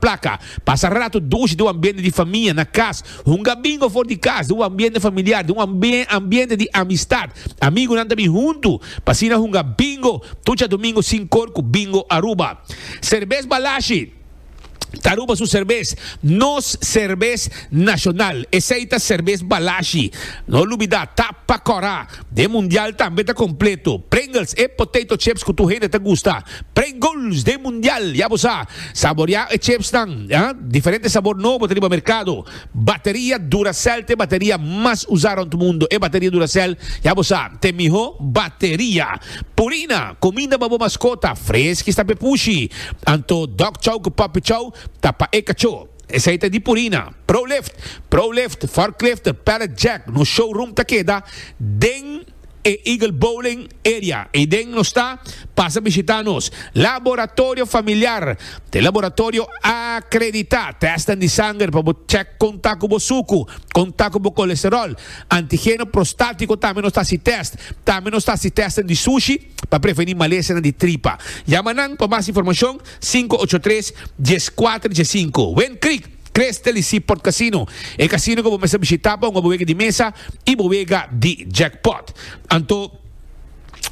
Plaka, Pasa ratu dushi di un ambiente di famia na kas, hunga bingo for di kas, di un ambiente familiar, di un ambiente di amistat. Amigunan ta bin huntu, pa asina hunga bingo tur djadumingu sin kor ku Bingo Aruba. Serbes Balashi ta Aruba su serbes, nos serbes nashonal. Esei ta serbes Balashi. No lubidá, ta pa kòrá. D'e mundial tambe ta completo. Pringles, e potato chips cu tur hende ta gusta. Pringles d'e mundial, ya bo sa. Saborea e chipsnan, ah, diferente sabor nobo ta riba mercado. Bateria Duracell t'e bateria mas usa rond mundo. E bateria Duracell, ya bo sa, t'e miho bateria. Purina, cuminda pa bo mascota, freski sta p'e pushi. Anto Dog Chow cu Puppy Chow ta pa e cacho. Esei ta di Purina, Prolift, Prolift, Forklift, Pallet Jack, nos showroom ta keda den e Eagle Bowling area ei den nos ta, pasa bishita nos Laboratorio Familiar ta e laboratorio akredita, testan di sanger pa bo check kon ta ku bo suku, kon ta ku bo kolesterol, antigeno prostatiko tambe nos ta hasi test, tambe nos ta hasi testan di sushi, pa prevení malesanan di tripa. Yama nan pa mas informashon sinku ocho tres, dies kuater dies sinku. Wind Creek, Creste li Seaport Casino, e kasino ku bo mester bishitá pa un abuega di mesa i buega di jackpot. Anto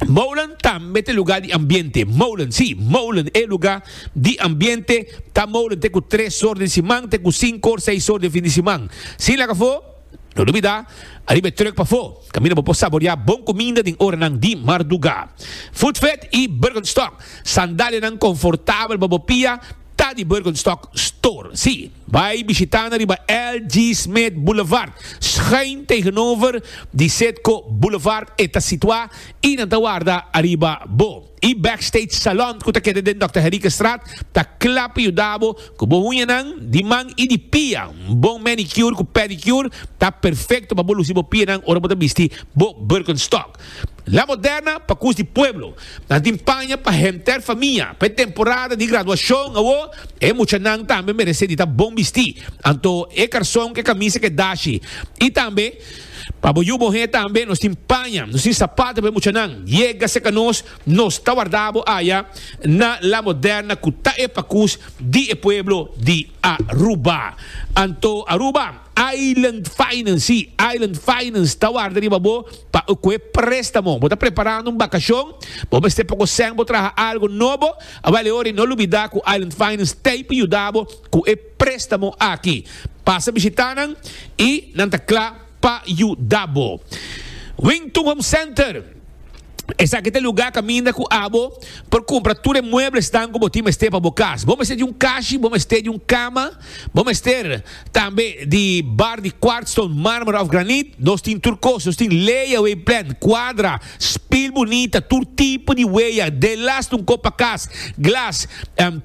Molen tambe ta e lugá di ambiente. Molen, sí, Molen, e lugá di ambiente ta Molen te ku tres or den siman te ku sinku or seis or den fin di siman. Sin laga afó. No dubidá, ariba e trùk pafó, kaminda bo por saboriá bon kuminda den oranan di mardugá. Footvet i Birkenstock, sandalianan konfortabel pa bo pia, ta di Birkenstock Store. Sí, bai bishitá nan riba LG Smith Boulevard, schuin tegenover di Citgo Boulevard e ta situá i nan ta warda ariba bo. E Backstage Salon cu ta keda den Dòkter Herikenstraat ta cla pa yuda bo cu bo uñanan di man y di pia. Un bon manicure cu pedicure ta perfecto pa bo luci bo pianan ora bo ta bisti bo Birkenstock. La Moderna pa cus di pueblo. Nan tin paña pa henter famia. Pa e temporada di graduacion awo e muchanan tambe merece di ta bon bisti. Anto e carson cu e camisa ke dashi. Y tambe. Pa bo yu bo he tambe nos tin paña, nos tin sapato pa e muchanan. Yega serka nos, nos ta warda bo aya na La Moderna ku ta e pakus di e pueblo di Aruba. Anto Aruba Island Finance, si, Island Finance ta warda riba bo pa ku e prestamo. Bo ta preparando un bakashon? Bo mester poko sèn bo traha algu nobo? Awal e ora i no lubida ku Island Finance ta ey pa yuda bo ku e. Préstamo aki. Pasa bishitá nan i nan ta kla pa yuda bo. Wington Home Center, Esaki ta e lugá kaminda ku abo por kumpra tur e mueblesnan ku bo tin mester pa bo kas. Bo mester di un kashi, bo mester di un kama, bo mester tambe di bar di kwartston, mármara òf granit. Nos tin tur kos. Nos tin leia, wei plèn, kuadra. Spil bunita, tur tipo di weya, de laston kop pa kas, glas,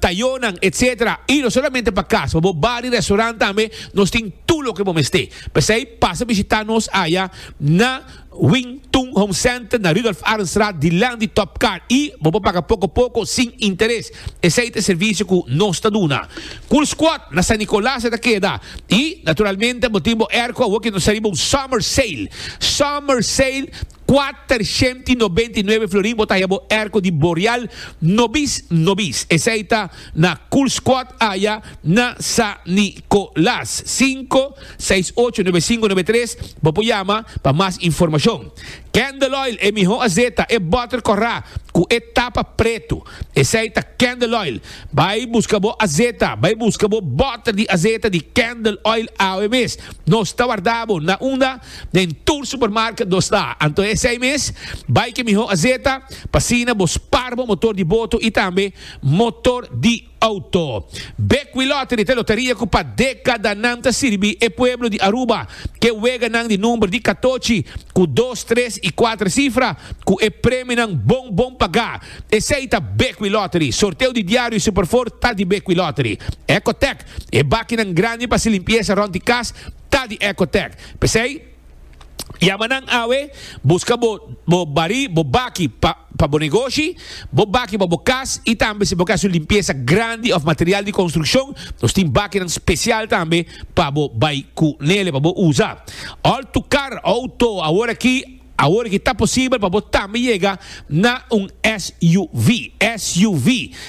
tayonan, etc. Y no solamente pa kas, pa bo bar y restaurant tambe nos tin tur loke bo mester. P'esey pasa bishita nos aya na Wing Tun Home Center na Rudolf Arendstraat dilanti Top Car y bo por paga poco poco sin interes. Esei ta e servisio ku nos ta duna. Cool Squad na San Nicolas e ta keda. I, naturalmente, bo tin bo airco awo ke nos ta riba un summer sale. Summer sale, kuatershent i nobenta i nuebe florin bo ta haya bo airco di Boreal nobis nobis. Esei ta na Cool Squad aya na San Nicolas. Sinku, seis, ocho, nuebe, sinku, nuebe, tres, bo por yama pa mas informashon. Candle Oil, e mihó azeta, e butter kòrá ku e tapa pretu. Esei ta candle oil. Bai busca bo azeta. Bai busca bo botter di azeta di candle oil awe mes. Nos ta warda bo na unda den tur supermarket nos ta. Anto esei mes bai ke miho azeta pa asina bo spar bo motor di boto y tambe motor di auto. Bekwee Lottery ta e loteria cu pa decadanan ta sirbi e pueblo di Aruba ke weganan di number di catochi cu dos, tres y cuater cifra cu e premionan bon bon paga. Esei ta Bequi Lottery. Sorteo di diario y Superford ta di Bequi Lottery. Ecotec, e bakinan grandi pa haci limpieza rond di cas ta di Ecotec. P'esei, yama nan awe, busca bo bo bari, bo baki pa pa bo negoshi, bo baki pa bo cas y tambe si bo ke haci un limpieza grandi of material di construccion, nos tin bakinan special tambe pa bo bay cu nele, pa bo uza. All tu car, auto, awor aki, Awor ki ta posibel pa bo tambe yega na un SUV. SUV,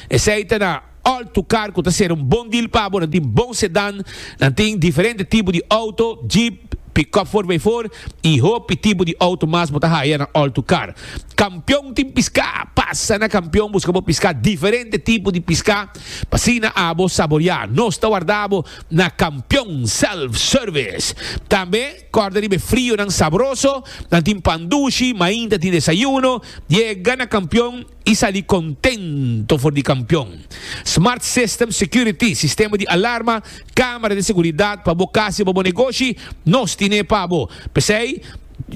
esei ta na altu kar ku ta ser un bon deal pa bo. Nan tin bon sedan, nan tin diferente tipo di auto, jeep, pick-up for by four i hopi tipo di auto mas bo ta haya na altu kar. Kampion tin piska, pasa na Kampion buska bo piska, diferente tipo di piska pa asina abo saboria. Nos ta warda bo na Kampion Self Service tambe. Kòrda riba e frionan sabroso, nan tin pan dushi, mainta ta tin desayuno, diae gana kampion i sali kontento for di kampion. Smart System Security, sistema di alarma, kámara di seguridat pa bo kas i pa bo negoshi, nos tin'é pa bo. P'esei,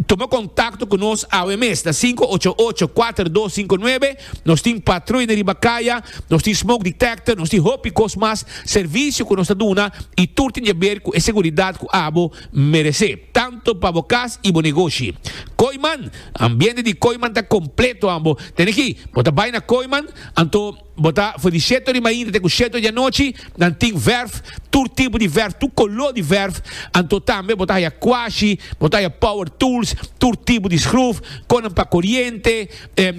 tuma kontakto ku nos awe mes na sinku ocho ocho, kuater dos sinku nuebe Nos tin patruina riba kaya, nos tin smoke detector, nos tin hopi kos mas servisio ku nos ta duna i tur tin jaber ku e seguridat ku abo merese, tantu pa bo kas i bo negoshi. Kooiman, Ambiente di Kooiman ta kompleto ambo. Den aki, bo ta bai na Kooiman, anto bo ta for di sheto di mainta te ku sheto di anochi, nan tin verf, tur tipo di verf, tur koló di verf, anto tambe bo ta haya kwashi, bo ta haya power tools, tur tipo di skruf, konnan pa koriente,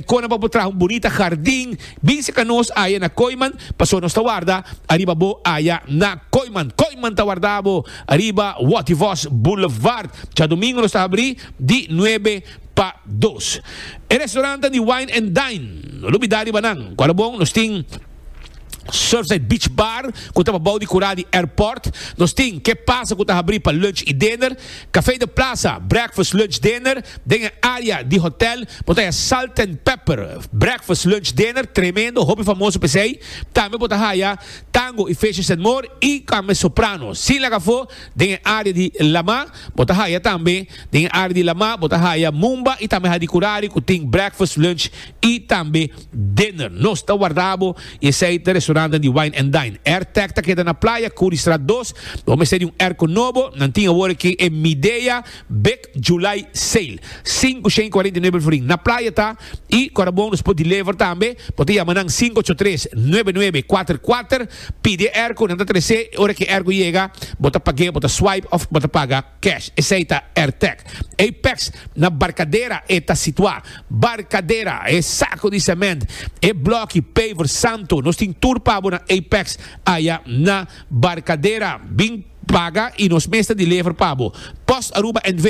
Kona bo por traha un bunita hardin? Bin seka nos aya na Kooiman, paso nos ta warda ariba bo aya na Kooiman. Kooiman ta warda bo ariba Wattivos Boulevard. Djadumingu nos ta habri di nuebe pa dos. E restorantan di Wine and Dine, no lo bida riba nan. Kual a bon, nos tin. Surfside Beach Bar cu ta pa bao di cura di airport. Nos tin Ke Pasa cu ta habri pa lunch y dinner, Cafe de Plaza, breakfast, lunch, dinner, den e area di hotel. Bo ta haya Salt and Pepper, breakfast, lunch, dinner, tremendo, hopi famoso pa esey. Tambe bo ta haya Tango y Fishes and More y tambe Soprano, sin laga afo, den e area di Lama. Bo ta haya tambe den e área di Lamá, bo ta haya Mumba i tambe Hadicurari ku tin breakfast, lunch i tambe dinner. Nos ta warda bo i esei ta restorannan di Wine and Dine. Airtech ta keda na Playa, Curriestraat dos. Bo mester di un airco nobo. Nan tin awor aki e Midea Big July Sale. Sinku shen i kuarenta i nuebe alforin. Na Playa ta. Y cu ta bon nos por deliver tambe, bo ta yama nan sinku ocho tres, nuebe nuebe, kuater kuater, pidi e ergo, nan ta trece, y ora cu e ergo yega, bo ta pag'e, bo ta swipe of bo ta paga cash. Esey ta Airtech. Apex, na Barcadera e ta situa. Barcadera, e saco di cement, e bloki, paver, santo, nos tin tur pa bo na Apex, aya na Barcadera. Bin paga y nos mes ta deliver pa bo. Post Aruba NV.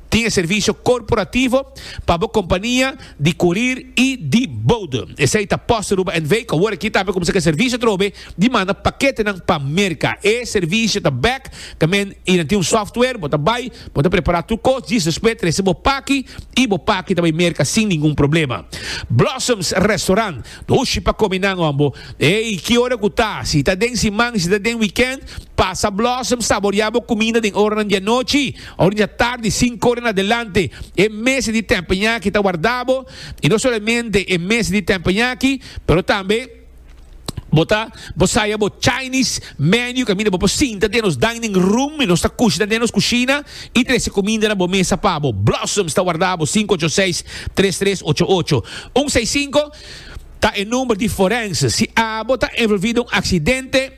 Tin e servisio korporativo pa bo kompania di kurir i di boude. Esei ta Post Aruba NV, ku awor aki ta haña kuminsá ku e servisio atrobe di manda paketenan pa Merka. E servisio ta bèk ta men i nan tin un sòftwer. Bo ta bai, bo ta prepará tur kos, djis despues trese bo paki i bo paki ta bai Merka sin ningun problema. Blossoms Restaurant, Dushi pa kome nan hombo! Ei, ki ora ku ta? Si ta den siman, si ta den wikènt, pasa Blossoms saboriá bo kuminda den oranan di anochi. Ora dja tardi, sinku ora na delante, e mes di tempeñaki ta warda bo, i no solamente e mes di tempeñaki, pero tambe bo ta bo saya bo Chinese menu kaminda bo por sinta den nos dining room, i nos ta kushna den nos kushina i trese kuminda na bo mesa pa bo. Blossoms ta warda bo sinku ocho seis, tres tres ocho ocho un seis sinku ta e number di forense si abo ta envolvido un aksidente.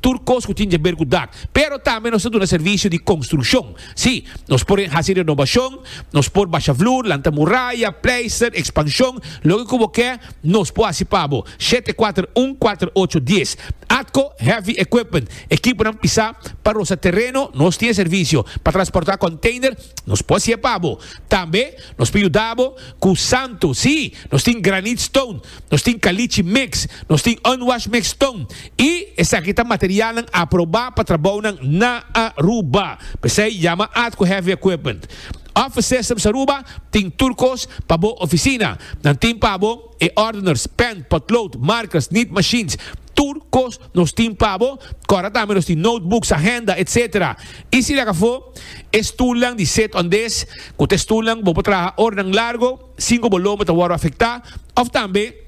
tur kos ku tin jaber ku dak. Pero tambe nos ta duna servisio di konstrukshon. Sí, nos por hasi renobashon, nos por basha flur, lanta muraya, pleister, ekspanshon, loke ku bo ke, nos por hasi pa bo. Shete kuater un kuater ocho dies. Atco Heavy Equipment, ekiponan pisá pa rosa tereno, nos tin e servisio. Pa transportá konteiner, nos por hasié pa bo. Tambe nos por yuda bo ku santo, sí, nos tin granit stone. nos tin kalichi mix, nos tin unwash mix ton y esaki ta materialnan aproba pa trabounan na Aruba. P'esey yama at cu Heavy Equipment. Office Systems Aruba tin tur cos pa bo oficina. Nan tin pa bo e ordeners, pen, potlood, markers, nit machines. Tur cos nos tin pa bo. Cora tambe nos tin notebooks, agenda, etc. Y si lagafo e stoelnan di Sit On This cu ta e stoelnan bo por traha ora nan largo. sin ku bo lomo ta wòrdu afektá, òf tambe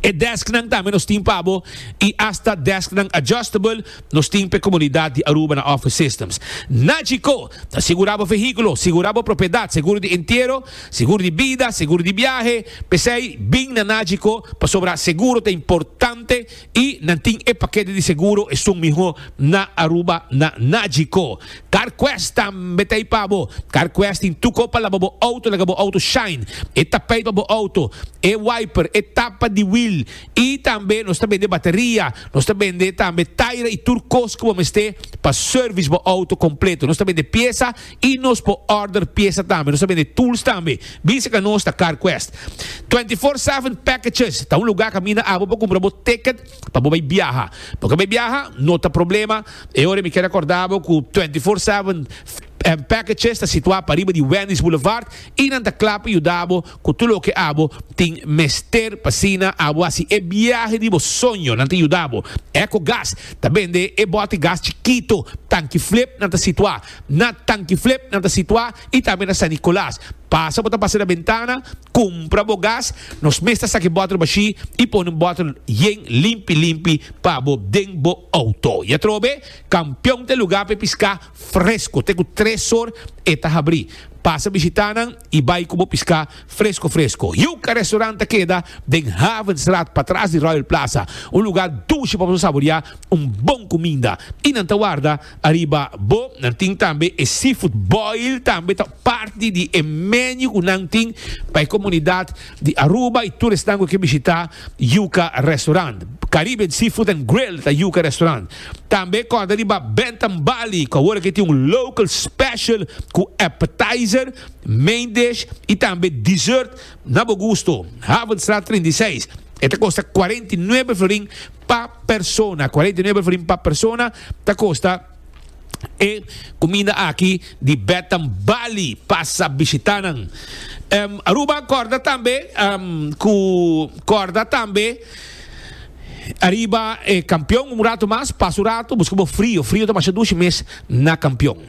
e dèsknan tambe nos tin pa bo i asta dèsknan adjustable nos tin pa e komunidat di Aruba na Office Systems. Na Chicó, ta sigurá bo vehíkulo, sigurá bo propiedat, seguro di entiero, seguro di bida, seguro di biahe. P'esei, bin na Nachicó pasobra seguro ta importante. Y nan tin e paquete di seguro esun miho na Aruba na Nagico. CarQuest tambe ta ei pa bo. CarQuest tin tuko pa laba bo auto laga bo auto shine. E tapijt pa bo auto, e wiper, e tapa di wiel y tambe nos ta bende bateria. Nos ta bende tambe taira y tur cos cu bo mester pa service bo auto completo. Nos ta bende pieza. Y nos por order pieza tambe. Nos ta bende tools tambe. Bin seca nos ta CarQuest. Twenty Four Seven Packages ta un lugar caminda abo por cumpra bo ticket pa bo bay biaha. Bo ke bay biaha? No ta problema. E ora mi kier acorda bo cu Twenty Four Seven Packages ta situa pariba di Wendy's Boulevard y nan ta cla pa yuda bo cu tur loke abo tin mester pa asina abo haci e biahe di bo soño. Nan ta yuda bo. Ecogas ta bende e bote gas chikito, tanki flip, nan ta situa. Na Tankiflip nan ta situá i tambe na San Nicolas. Pasa bo ta pasa na bentana, kumpra bo gas. Nos mes ta saki bòtel bashí i pone un bòtel yen limpi limpi pa bo den bo outo. I atrobe, Kampion ta e lugá pa e piská fresko. Te ku tres or e ta habrí. Pasa bishitá nan i bai ku bo piská fresko fresko. Yuca Restaurant ta keda den Havenstraat patras di Royal Plaza, un lugá dushi pa bo saboriá un bon kuminda. I nan ta warda Ariba bo nan tin tambe e seafood boil tambe ta parti di e menu ku nan tin pa e komunidat di Aruba i tur esnan ku ke bishita Yuka Restaurant. Caribbean Seafood and Grill ta Yuka Restaurant. Tambe kòrda riba Bantam Bali ku awor ake tin un local special ku appetizer, main dish i tambe dessert Na bo gusto, Havenstraat trinta i seis, e ta kosta kuarenta i nuebe florin pa persona, kuarenta i nuebe florin pa persona ta kosta e kuminda aki di Betam Bali, pasa bishita nan. Em, Aruba korda tambe em, ku korda tambe ariba e kampion un ratu mas, pasa un ratu, buska bo frio, frio ta masha dushi mes na kampion.